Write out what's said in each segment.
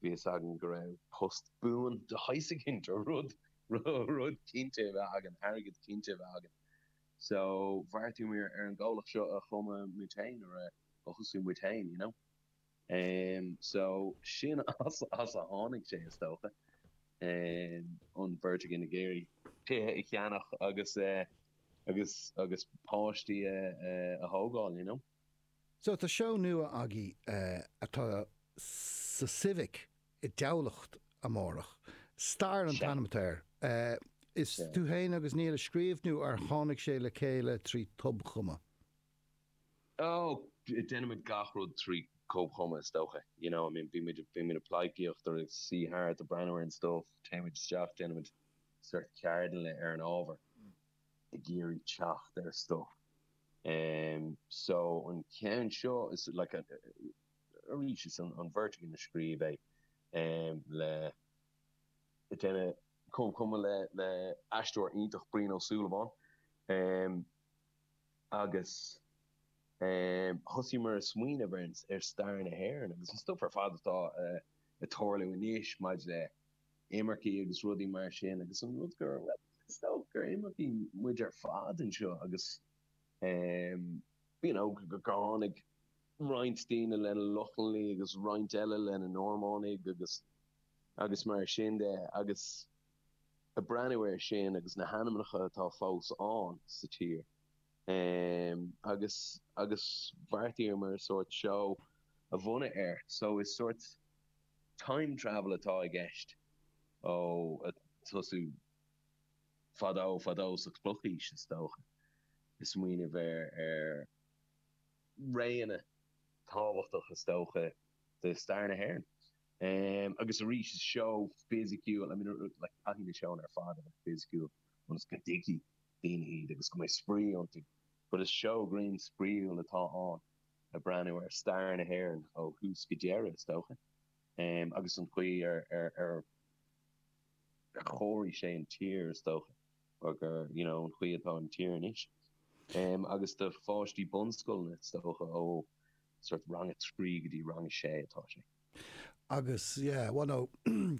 Bhí fhios againn go raibh post buan de shaghas againn, tá, rud, rud cinnte a bheith againn, airgead cinnte a bheith againn. So, bheartaigh muid ar an gcomhlacht seo a chumadh muid féin, or a thosú muid féin, you know. Em, so, sin as, as a tháinig sé, is dócha. Em, an bheirt againn ag iarraidh tithe a cheannach agus eh, agus, agus páistí a, a thógáil, you know. So tá seó nua agaibh atá sa Civic i dTamhlacht amárach. Stair an t-ainm atá air. Is tú féin agus Neil a scríobh nó ar tháinig sé le chéile trí tobchumadh? Ó, déanaimid gach rud trí thobchumadh is dócha. You know, I mean, bímid, bímid ag pleidhcíocht or ag suí thart or breathnú ar an stuff, téimid isteach, déanaimid sórt ceardlanna ar an ábhar. ag iarraidh teacht ar stuff so an ceann seo is like arís is an bheirt againn a scríobh é le deineadh comhchumadh le le aisteoir iontach Brian Ó Súilleabháin agus thosaíomar ag smaoineamh ar stair na hÉireann agus an stuff ar fad atá ag tarlú anois maidir le imircigh agus rudaí mar sin agus an rud go raibh, bhuel, is dócha gur imircigh muid ar fad anseo agus em you know go dtáinig roinnt daoine lena Lochlannaigh agus roinnt eile lena Normánaigh agus, agus mar sin de agus a' breathnú ar sin agus na hainmneacha atá fós ann sa tír em agus, agus bheartaíomar sórt seó a bhunú air so is sórt. Time travel atá i gceist. Ó, ag tosú fadó fadó, sa Chlochaois is dócha, ag smaoineamh ar réanna tábhachtacha is dócha de stair na hÉireann. Agus arís, is seó fisiciúil, I mean, like, caithfidh na seónna ar fad a bheith fisiciúil ionas go dtuigfidh daoine iad agus go mbeidh spraoi iontu, but is seó grinn spraíúil atá ann. ag breathnú ar stair na hÉireann ó thús go deireadh, is dócha, agus an chaoi ar chóirigh sé an tír, is dócha, mar, you know, an chaoi atá an tír anois. Agus do pháistí bunscoile, is dócha, ó sórt rang a trí go dtí rang a sé atá sé. Agus, yeah, bhuel no,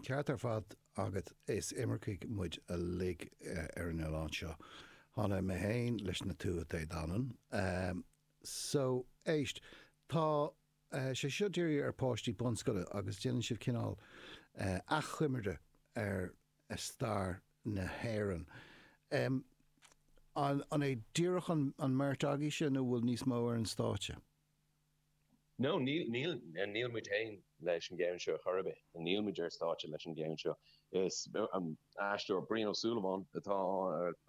ceart ar fad agat, is imircigh muid uilig ar an oileán seo. Tháinig mé féin leis na Tuatha Dé Danann. So, éist, tá sé seo dírithe ar pháistí bunscoile agus déanann sibh cineál achoimre ar stair na hÉireann. An é díreach an mbeirt agaibhse nó bhfuil níos mó ar an stáitse? No, níl, níl, níl muid féin leis an gceann seo chor ar bith, níl muid ar stáitse leis an gceann seo. Is an aisteoir Brian Ó Súilleabháin atá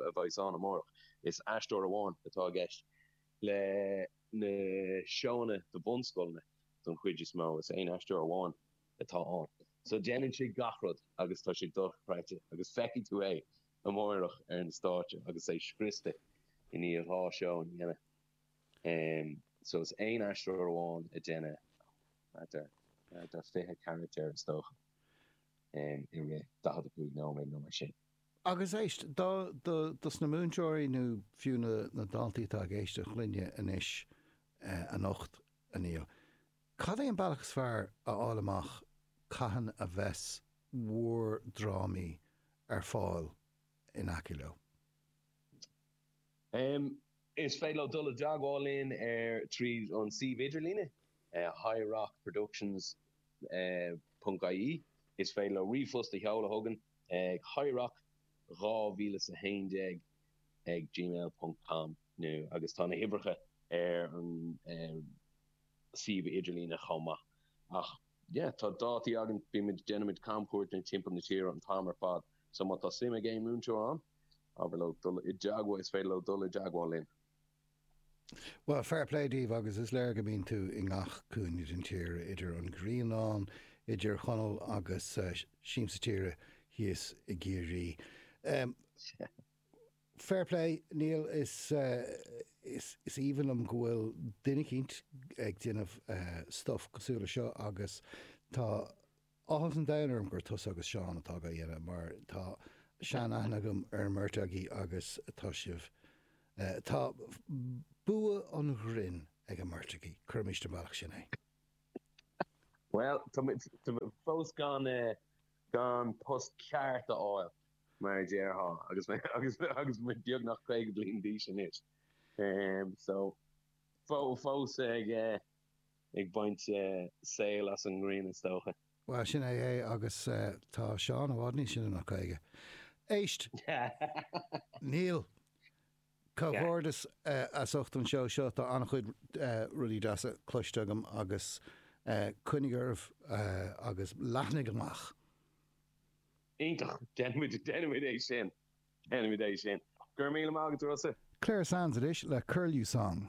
a bheas ann amárach. Is aisteoir amháin atá i gceist le na seóanna do bhunscoileanna don chuid is mó, is aon aisteoir amháin atá ann. So déanann sé gach rud agus tá sé dochreidte agus feicfidh tú é amárach ar an stáitse agus é scriosta i ndiaidh dhá seó a dhéanamh. so is aon aisteoir amháin ag déanamh thart ar 20 caractar is dócha i rith 45 nóiméad nó mar sin. Agus éist dos na múinteoirí nó fiú na daltaí atá ag éisteacht linne anois anocht a Néill, cad é an bealach is fearr a fháil amach cathain a bheas bhúr drámaí ar fáil in aice leo? Is féidir leo dul i dteagmháil linn tríd an suíomh idirlíne highrockproductions. ie. Is féidir leo ríomhphost a sheoladh chugainn ag highrock2011 ag gmail ponc com nó, agus tá na huimhreacha ar an suíomh idirlíne chomh maith. Ach yeah, tá dátaí againn, bímid, déanaimid camchuairt timpeall na tíre an t-am ar fad, so má tá suim ag aon mhúinteoir ann, is féidir leo dul i dteagmháil linn. Bhuel, fair play daoibh agus is léir go mbíonn tú i ngach cúinne den tír, idir an Grianán, i dTír Chonaill agus Siamsa Tíre thíos i gCiarraí. Fair play, Niall, is aoibhinn liom go bhfuil duine eicínt ag déanamh stuff cosúil leis seo agus tá Áthas an domhain orm gur tusa agus Seán atá dhá dhéanamh mar tá sean-aithne agam ar an mbeirt agaí agus tá sibh, tá bua an ghrinn ag an mbeirt agaí. Cuirimis ar an mbealach sin é. Bhuel, tá muid fós gan post ceart a fháil, mar a déarfá, agus muid beagnach 50 bliain d'aois anois. So, fós ag ag baint soilse as an ngrian is dócha. Bhuel, sin é é agus tá Seán i bhfad níos sine ná caoga. Éist! Níl! Comhghairdeas as ucht an seó seo, tá an-chuid rudaí deasa cloiste agam agus coinnigh oraibh agus leathnaigh amach! Iontach! Déanfaimid, déanfaimid é sin, déanfaimid é sin. Go raibh míle maith agat, a Rossa! Clare Sands anois le Curlew Song.